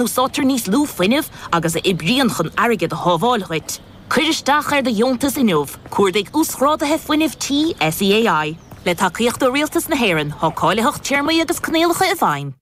Úsáidtear níos lú fuinnimh agus a oibríonn chun airgead a shábháil dhuit. Cuir isteach ar do dheontas inniu, cuardaigh Uasghráduithe Fuinnimh Tí SEAI. Le tacaíocht ó Rialtas na hÉireann, tá cáilitheacht téarmaí agus coinníollacha i bhfeidhm.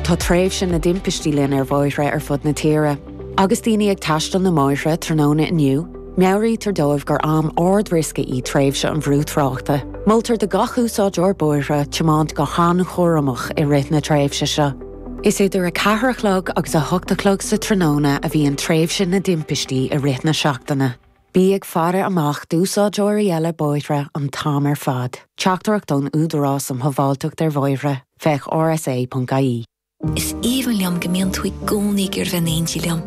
Tá tréimhse na dtimpistí linn ar bhóithre ar fud na tíre. Agus daoine ag taisteal na mbóithre tráthnóna inniu, meabhraítear dóibh gur am ard-riosca í tréimhse an bhrú tráchta. Moltar do gach úsáideoir bóithre tiomáint go han-chúramach i rith na tréimhse seo. Is idir a ceathair a chlog agus a hocht a chlog sa tráthnóna a bhíonn tréimhse na dtimpistí i rith na seachtaine. Bí ag faire amach d'úsáideoirí eile bóithre an t-am ar fad. Teachtaireacht ón Údarás um Shábháilteacht ar Bhóithre, féach rsa.ie. Is aoibhinn liom go mbíonn tú i gcónaí ag iarraidh bheith in éindí liom.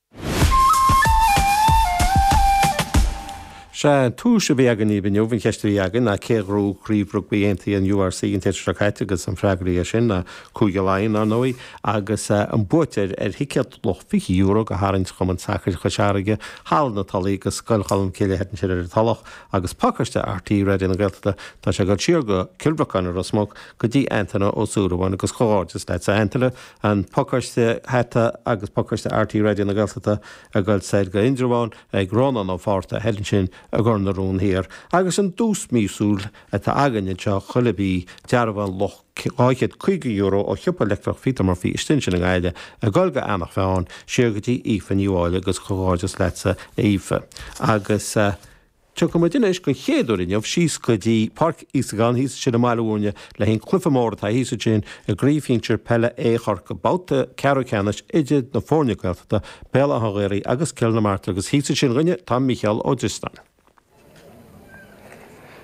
Sea, duais a bhí againn daoibh inniu, an cheist a bhí againn ná cé a ghnóthaigh craobh rugbaí aontaithe an URC an tseachtain seo caite agus an freagra air sin ná Cúige Laighean, ar ndóigh, agus an buaiteoir ar thicéad luach €20 do tharraingt Chumann Sacair Chois Fharraige, Halla na Tulaí agus Scoil Cholm Cille thoir ansin ar an Tulach agus pacáiste RTÉ Raidió na Gaeltachta tá sé ag dul siar go Cill Bhriocáin i Ros Muc go dtí Antaine Ó Súilleabháin agus comhghairdeas leat a Antaine An pacáiste hata agus pacáiste RTÉ Raidió na Gaeltachta ag goil soir go Indreabhán ag Rónán Ó Fátharta thoir ansin i gCor na Rún Thiar agus an duais míosúil atá againn anseo chuile mhí, dearbhán luach €250 ó shiopa leictreach Peter Murphy istigh ansin i nGaillimh, ag goil go Eanach Mheáin, siar go dtí Aoife Ní Mháille agus comhghairdeas leatsa a Aoife agus. Tiocfaidh muid anois don chéad uair inniu síos go dtí Páirc Íosagáin thíos ansin i mBaile Mhúirne le haghaidh an cluife mór atá thíos ansin i gCraobh Shinsir Peile A Chorcaigh, babhta ceathrú ceannais idir na foirne Gaeltachta, Béal Átha an Ghaorthaidh agus Cill na Martra agus thíos ansin dhúinne tá Mícheál Ó Drisleáin.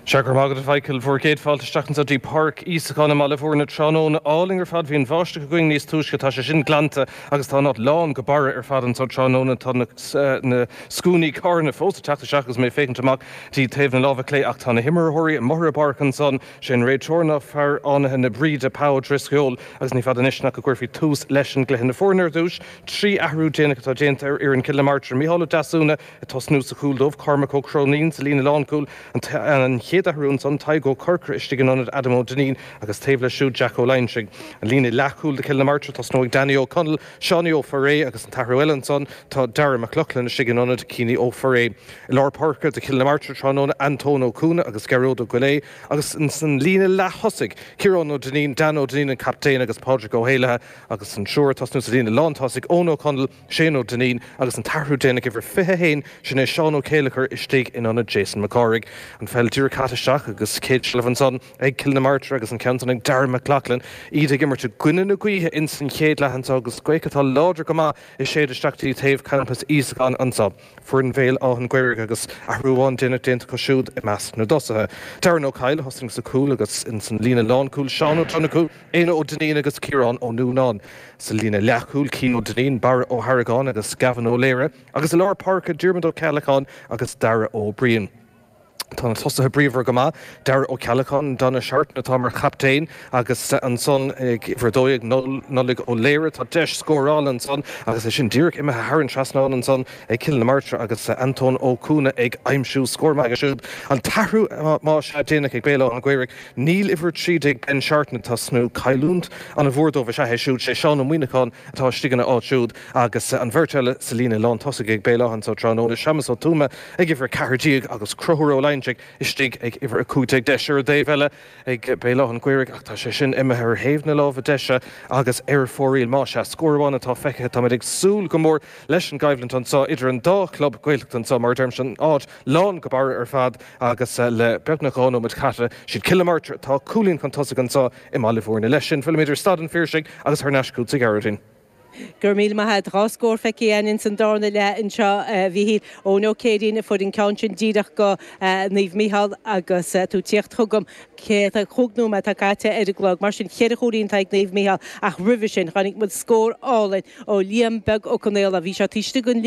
Sea, go raibh maith agat a Mhichael. Bhur gcéad fáilte isteach anseo dtí Páirc Íosagáin i mBaile Mhúirne. Tráthnóna álainn ar fad. Bhí an bháisteach againn níos túisce. Tá sé sin glanta. Agus tá an áit lán go barra ar fad anseo tráthnóna. Tá na scuainí carranna fós ag teacht isteach agus mé ag féachaint amach dtí taobh na láimhe clé. Ach tá na himreoirí amuigh ar an bpáirc ansan. Sé an réiteoir ná fear Fhánaithe na Bríde, Pa Ó Drisceoil, agus ní fada anois ná go gcuirfí tús leis an gcluiche. Na foirne ar dtúis. Trí athrú déanach atá déanta ar fhoireann Chill na Martra. Micheál Ó Deasúna Ag tosnú sa chúl dóibh, Cormac Ó Cróinín, sa líne lánchúl, an chéad athrú ansan, Tadhg Ó Corcora istigh in ionad Adam Ó Duinnín agus taobh leis siúd, Jack Ó Loingsigh. An líne leathchúl do Cill na Martra, tosnóidh Danny Ó Conaill, Seánie Ó Forréidh agus an t-athrú eile ansan, tá Darragh Mac Lochlainn istigh in ionad Cian Ó Forréidh. I lár páirce do Chill na Martra tráthnóna, Antóin Ó Cuana agus Gearóid Ó Goillidhe agus san líne leath-thosaigh, Ciarán Ó Duinnín, Dan Ó Duinnín an captaen agus Pádraig Ó hÉalaithe agus an triúr ag tosnú sa líne lántosaigh, Eoin Ó Conaill, Shane Ó Duinnín agus an t-athrú déanach uimhir 21, sin é Seán Ó Céilleachair istigh in ionad Jason Mac Cárthaigh. An pheil díreach caite isteach agus céad seilbh ansan ag Cill na Martra agus an ceann san ag Dara Mac Lochlainn. Iad ag imirt i gcoinne na gaoithe ins an chéad leath anso agus gaoth atá láidir go maith ag séideadh isteach dtí taobh campas Íosagáin anso. Foireann Bhéal Átha'n Ghaorthaidh agus athrú amháin déanach déanta acu siúd i measc na dtosaithe. Darren Ó Coill a thosaíonn sa chúl agus ins an líne lán-chúil Seán Ó Donnchú, Éanna Ó Duinnín agus Ciarán Ó Nuanáin. Sa líne leath-chúil Cian Ó Duinnín, Barra Ó hAragáin agus Gavin Ó Laoire agus i lár páirce Diarmuid Ó Ceallacháin agus Dara Ó Briain. Tá na tosaithe bríomhar go maith, Dara Ó Ceallacháin, Donagh Seartan atá mar chaptaen agus ansan ag uimhir a dó dhéag, Nollaig Ó Laoire. Tá deis scórála ansan agus é sin díreach imithe thar an trasnán ansan ag Cill na Martra agus Antóin Ó Cuana ag aimsiú scór maith aige siúd. An t-athrú, más ea, déanach ag Béal Átha an Ghaorthaidh. Níl uimhir a trí déag Ben Seartan ag tosnú, cailliúnt ana mhór dóibh is ea é siúd. Sé Seán Ó Muíneacháin atá istigh ina áit siúd agus an bheirt eile sa líne lán tosaigh ag Béal Átha anso tráthnóna, Séamas Ó Tuama, ag uimhir 14 agus Conchúr Ó Loingsigh istigh ag uimhir 15. Deis ar an dtaobh eile ag Béal Átha'n Ghaorthaidh ach tá sé sin imithe ar thaobh na láimhe deise agus ar fóraoil. Más ea, scór amháin atá feicthe. Táimid ag súil go mór leis an gcoimhlint anso idir an dá chlub Gaeltachta anso, mar a deirimse, an áit lán go barra ar fad agus le beagnach dhá nóiméad caite, siad Cill na Martra atá cúilín chun tosaigh anso i mBaile Bhúirne. Leis sin, fillimid ar Staid an Phiarsaigh agus thar n-ais chugatsa a Ghearóidín. Go raibh míle maith a't. Dhá scór feicthe a'inn ins an dárna leath anseo, a Mhíchíl. Eoin Ó Céirín a fuair an ceann sin díreach go Naomh Mícheál agus tú 'tíocht chugam. Cé atá, chúig nóiméad atá caite ar an gclog, mar sin cheithre chúilín atá ag Naomh Mícheál ach roimhe sin chonaic muid scór álainn ó Liam Beag Ó Conaola. Bhí sé taobh istigh den.